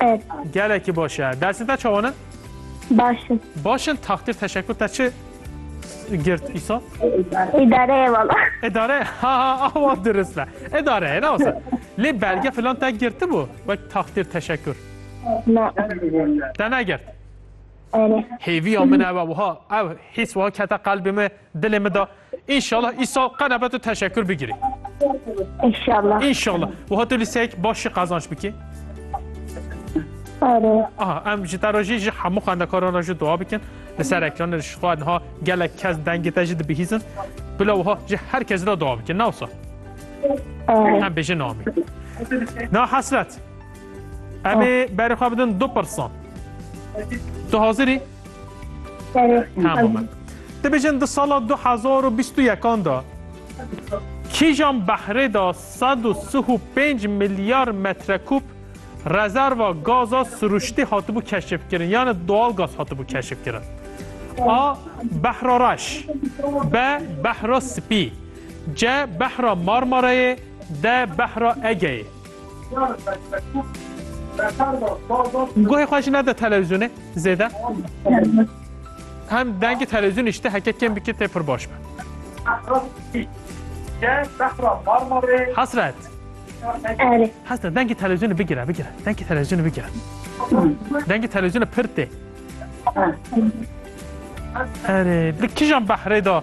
Ev. Gelekî baş e. Dersê te çawan e? Baş in. Baş in takdir teşekkür te çi girt îsa? Îdareye vala. Edare ha ha awa dirist be. Edare ne olsa. Lê belge filan te girti bû. Wek takdir teşekkür. Ne. Te ne girt. Ere. Hêviya min ev e wiha ev hîs wiha kete qalbê me dilê me da Înşallah îsal qe nebe tu teşekkür bigirî. Înşallah. Înşallah. Wiha tu lîseyek baş jî qazanç bikî. Are. Aha em ji te re jî ji hemû xwendekaran re jî dua bikin. Li ser ekranê ji xwe niha gelek kes dengê te jî dibihîzin. Bila wiha ji her kes re dua bikin. Nawsa. Em bêjin amîn. Na hesret. Em ê berê xwe bidin du pirsan. Tu hazirî? Tamam. Dibêjin di sala 2021 da kîjan behrê da 135 milyar metrekûb rezerva gaza siruştî hatibû keşifkirin yani doğal gaz hatibû keşifkirin. A. Behra reş B. Behra spî C. Behra Marmarayê D. Behra Egeyê Guhê xwe jî nede televizyonê zêde. Hem dengê televizyonê jî te heke kêm bikî tê pir baş be. Hasret. Erê. Hasret dengê televizyonê bigire bigire. Dengê televizyonê bigire. Dengê televizyonê pir tê. Erê, bi kijan behrê da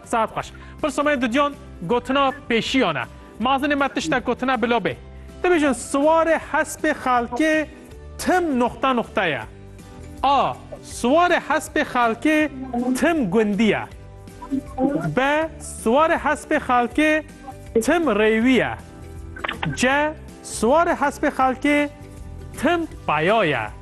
Saet xweş. Pirsa me duduyan gotina pêşiyan e. Mazinê me tiştek gotine bilo bê. Dibêjin siwarê hespê xelkê tim noxta noxta ye. A. Siwarê hespê xelkê tim gundî ye. B. Siwarê hespê xelkê tim rêwî ye. C. Siwarê hespê xelkê tim peya ye.